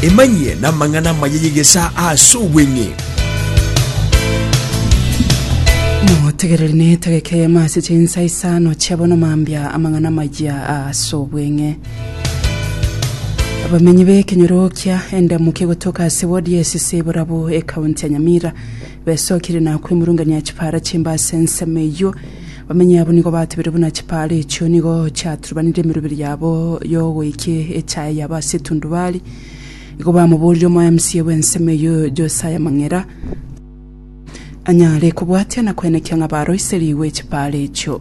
Emanyie namang'ana amaya y'egesaa ase obweng'e. Motegereri na etageka eyemo ase chinsa isano chia bono mambia amang'ana amaya ase obweng'e. Abamenyi b'ekenyoro kia Endamuki egotoka ase ward ya Esisiburabu, ekaunti ya Nyamira, Besokire na kwemurungania chipaara chimbe ase ensemo eyio. Bamenyi abwo nigo batebire buna chipaara echio nigo chiaturubanire emeroberi yabo y'ogoikia echaye yabo ase etundubari. Igo bamoborire omoemisia bw'ensemo eyio Josiah Mang'era anyare kobwatia na kwenekia ng'a baroiserigwe chipaara echio.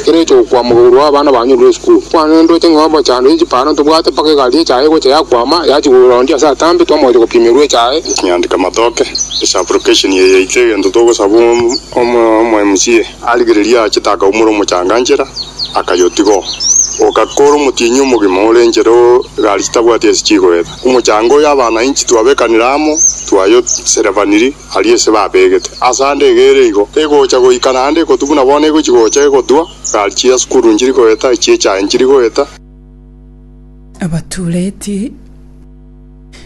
Ekero ocha gokwama igoro abana banyorire esukuru, kwanendote ng'a obochando chipara ntobwate mpaka egari echaye egocha yakwama yachi korwa onde ase atambe twamoetia gopimerwa echaye. Nyandika matoke ase application eye yaito egento togosaba omo MCA arigererie aachete akaumora omochanga nchera akayotiga oo. Oka kore omotienyi omogima ore nchera oo egari chitabwati ase chigoeta. Omochanga oyo abanainchi twabekanire amo twayoserevaniri. aria ase babegete. Ase ande iga ere igo egocha goika naende ekotu buna bono egochi gocha egotwa, egari chia sukuru nchiri goeta, echie chaye nchiri goeta. Abatureti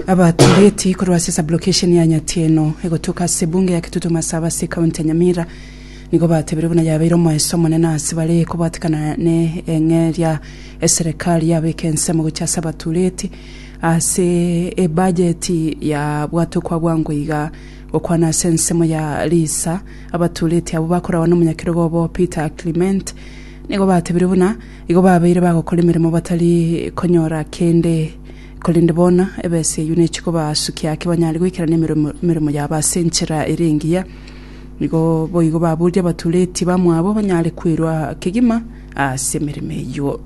Abatureti korwa ase sublocation ya Nyatieno egotuka ase Bunge ya Kitutu Masaba ase County ya Nyamira nigo batebirie buna yabeire omoeso omonene ase bare kobwatekana ne eng'eria eserekari yabeka ensemo gochia ase abatureti Ase ebajeti ya bwato kwabwangwa iga, gokwana ase ensemo ya Lisa, abatureti abwo bakoragwa nomonyakerogo obo Peter Clement nigo batebirie buna igo babeire bagokora emeremo batari konyora kende korende bono ebesa eyio nechikobasukia ake banyare goikerania emeremo emeremo yabo ase enchera ere engiya. Nigo boigo baburie abatureti bamwabo banyare kwerwa kegima ase emeremo eyio.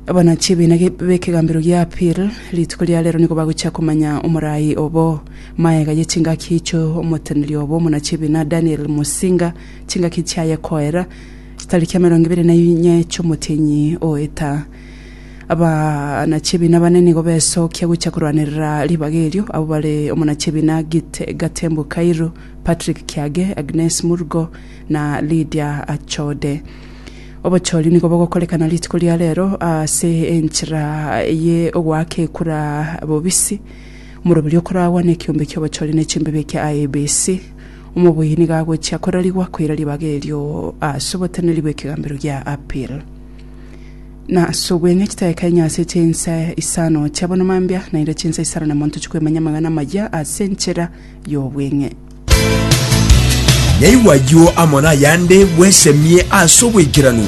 Abana chi'ebiina b'ekegambero gia Apir rituko ria rero nigo bagochia komanya omorai obo. Magega ye chingaki icho omoteneri obo omona chi'ebiina Daniel Musinga chingaki chiaye koera chitariki emerongo ebere na inye chi'omotienyi o eta. Abana chi'ebiina bane nigo besokia gochia korwanerera ribaga erio abwo bare omona chi'ebiina Gatembu Kairu, Patrick Kiage, Agnes Murgo na Lydia Achode. Obochori nigo bogokorekana rituko ria rero ase enchera ye ogoaka ekura bobisi. Omoroberio okoragwa na ekiombe ki'obochori ne chimbibe ekia IEBC, omoboyia nigo agochia korarigwa koira ribaga erio ase oboteneri bw'ekegambero gia Appeal. Na ase obweng'e chitaeka inye ase chinsa isano chia bono mambia, naende chinsa isano na monto chikwemanya amang'ana amaya ase enchera y'obweng'e. Yaigwa ayio amo nayande, bwesemie ase oboikeranu.